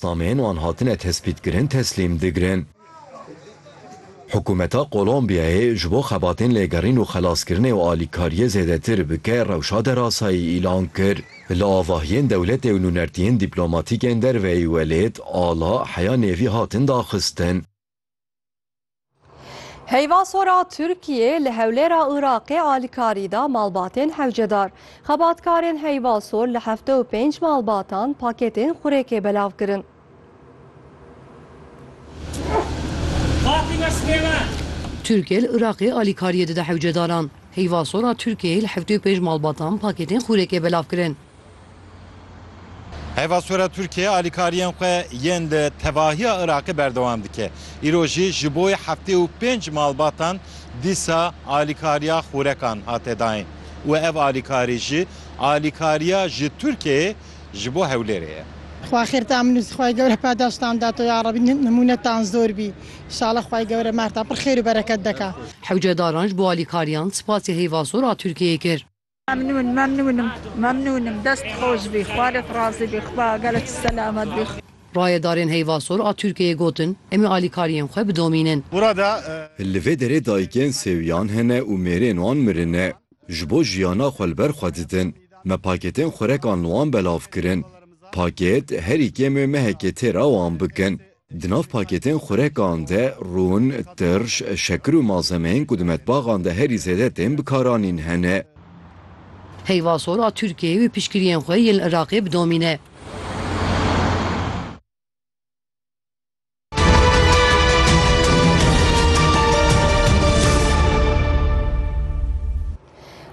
Nameyên wan hatine tespîtkirin teslîm digirin. Hikûmeta Kolombiyayê ji bo xebatên lêgerîn û xelaskirinê û alîkariyê zêdetir bike rewşa derasayî îlan kir. Li avahiyên dewletê û nûnertiyên dîplomatîk ên derveyî welêt, ala, heya nêvî hatin daxistin. Heyva sora Tirkiyê li hewlêra Iraqê alîkarî da malbatên hewcedar. Xebatkarên heyva sor li heft û pênc malbatan paketên xurêkê belav kirin. Tirkiye li Iraqê alîkariyê dide hewcedaran. Heyva sora Tirkiyê li heft û pênc malbatan paketên xurêkê belav kirin. Heyva sor a Tirkiyeyê alîkariyên xwe yên li tevahiya Iraqê berdewam dike. Îro jî ji bo heftê û pênc malbatan dîsa alîkariya xûrekan hate dayîn û ev alîkarî jî alîkariya ji Tirkiyeyê ji bo Hewlêrê ye. Xwa xêr ta min û Xway Gewre padaştan da to yarebî nimûnetan zor bî inşala Xway Gewre merta pir xêr û bereket deka. Hewcedaran ji bo alîkariyan spasê Heyva Sor a Tirkiyeyê kir. Memnûn memnûn im memnûn im dest xweş bî xwe li razî bî xwe gele tu selamet bî. Rayedarên Heyvasor a Tirkiyeyê gotin, Em ê alîkariyên xwe bidomînin. Li vê derê dayikên sêwiyan hene û mêrên wan mirine. Ji bo jiyana xwe li ber xwe didin. Me paketên xurekan li wan belav kirin. Paket, herî kêm ê mehekê têra wan bikin. Di nav pakêtên xurekan de rûn, tirş, şekir û malzemeyên ku di metbaxan de herî zêde tên bikaranîn hene. Heyva sor a Tirkiyeyê wê piştgiriyên xwe yên li Iraqê bidomîne.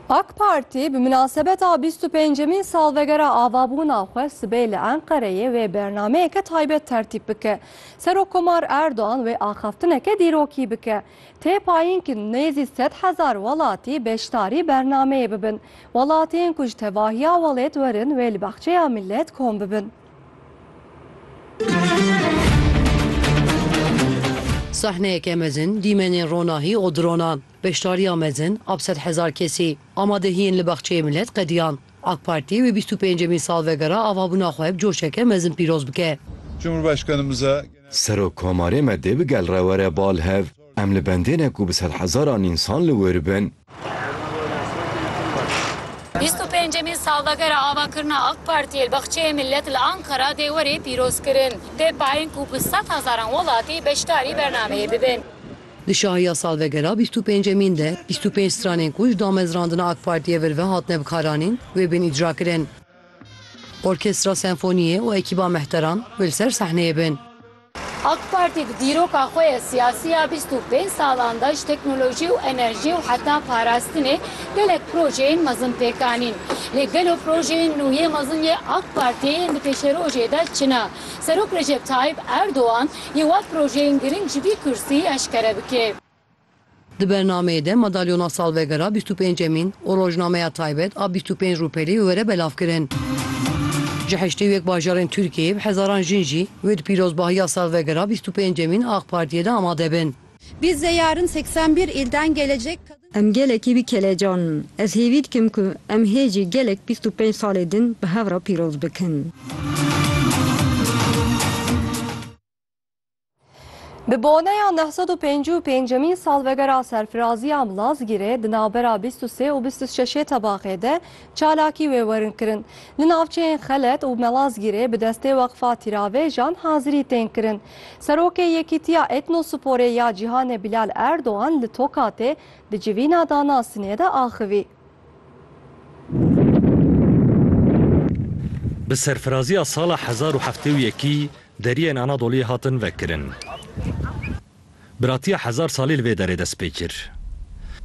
AK Partî bi minasebeta bîst û pêncemîn salvegera avabûna xwe sibê li Enqereyê wê bernameyeke taybet tertîp bike. Serokkomar Erdogan wê axaftineke dîrokî bike. Tê payîn ku nêzî sed hezar welatî beşdarî bernameyê bibin. Welatiyên ku ji tevahiya welêt werin wê li Baxçeya Millet kom bibin. Sahneyeke mezin dîmenên ronahî û dronan. Beşdariya mezin ab sed hezar kesî amadehiyên li Baxçeyê Milet qediyand. AK Partî wê bîst û pêncemîn salvegera avabûna xwe bi coşeke mezin pîroz bike. Cumhurbaşkanımıza Genel. Serok Komarê me dê bi gel re were bal hev. Em li bendê ne ku bi sed hezaran însan li wir bin. Bîst û pêncemîn salvegera avakirina AK Partiyê li Baxçeyê Milet li Ankara dê were pîrozkirin. Dê payên ku bi sed hezaran welatî beşdarî bernameyê bibin. Di şahiya salvegera bîst û pêncemîn de bîst û pênc stranên ku ji damezrandina AK Partiyê vir ve hatine bikaranîn wê bên îcrakirin. Orkestra Senfoniyê û ekîba mehteran wê li ser sehneyê bin. AK Partî di dîroka xwe ya siyasî ya bîst û pênc salan de ji teknolojî û enerjî û heta parastinê gelek projeyên mezin pêk anîn. Lê gelo projeyên nû yê mezin yê AK Partiyê yên di pêşerojê de çi ne? Serok Recep Tayyîp Erdogan, yê wan projeyên girîng ji vî kursî eşkere bike. Di bernameyê de Madalyona Salvegera bîst û pêncemîn û Rojnameya Taybet a bîst û pênc rûpelî bi were belav kirin. Ji heştê û yek bajarên Tirkiyeyê bi hezaran jin jî wê di pîrozbahiya salvegera bîst û pêncemîn a Ak Partiyê de amade bin. Biz de yarın seksen bir ilden gelecek kadın. Em gelekî bi kelecan in. Ez hêvî dikim ku em hê jî gelek bîst û pênc salê din bi hev re pîroz bikin. Bi boneya neh sed û pêncî û pêncemîn salvegera serfiraziya Milazgîrê di navbera bîst û sê û bîst û şeşê tebaxê de Çalakî wê werin kirin. Li navçeyên Xelet û Melazgîrê bi destê Weqfa Tîravêjan hazirî tên kirin. Serokê Yekîtiya Etnosporê ya Cîhanê Bilal Erdogan li Tokatê di civîna danasinê de axivî. Bi serfiraziya sala hezar û heftê û yekî deriyên Anadoliyê hatin vekirin. Biratiya hezar salî li vê derê dest pê kir.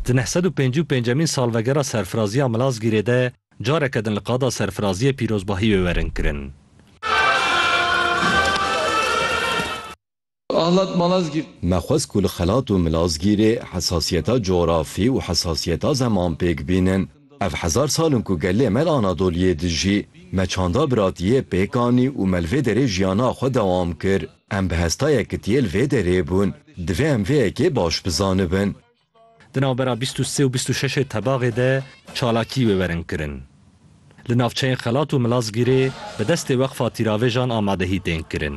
Di neh sed û pêncî û pêncemîn salvegera serfiraziya Milazgîrê de careke din li qada serfiraziyê pîrozbahî wê werin kirin. Ahlat Malazgirt. Me xwest ku li Xelat û Milazgîrê hesasiyeta cografî û hesasiyeta zeman pêk bînin. Ev hezar sal in ku gelê me li Anadoliyê dijî. Me çanda biratiyê pêk anî û me li vê derê jiyana xwe dewam kir. Em bi hestayek ku tiyê li vê derê bûn, divê em vê yekê baş bizanibin. Di navbera bîst û sê û bîst û şeşê tebaxê de çalakî wê werin kirin. Li navçeyên Xelat û Milazgîrê bi destê Weqfa Tîravêjan amadehî tên kirin.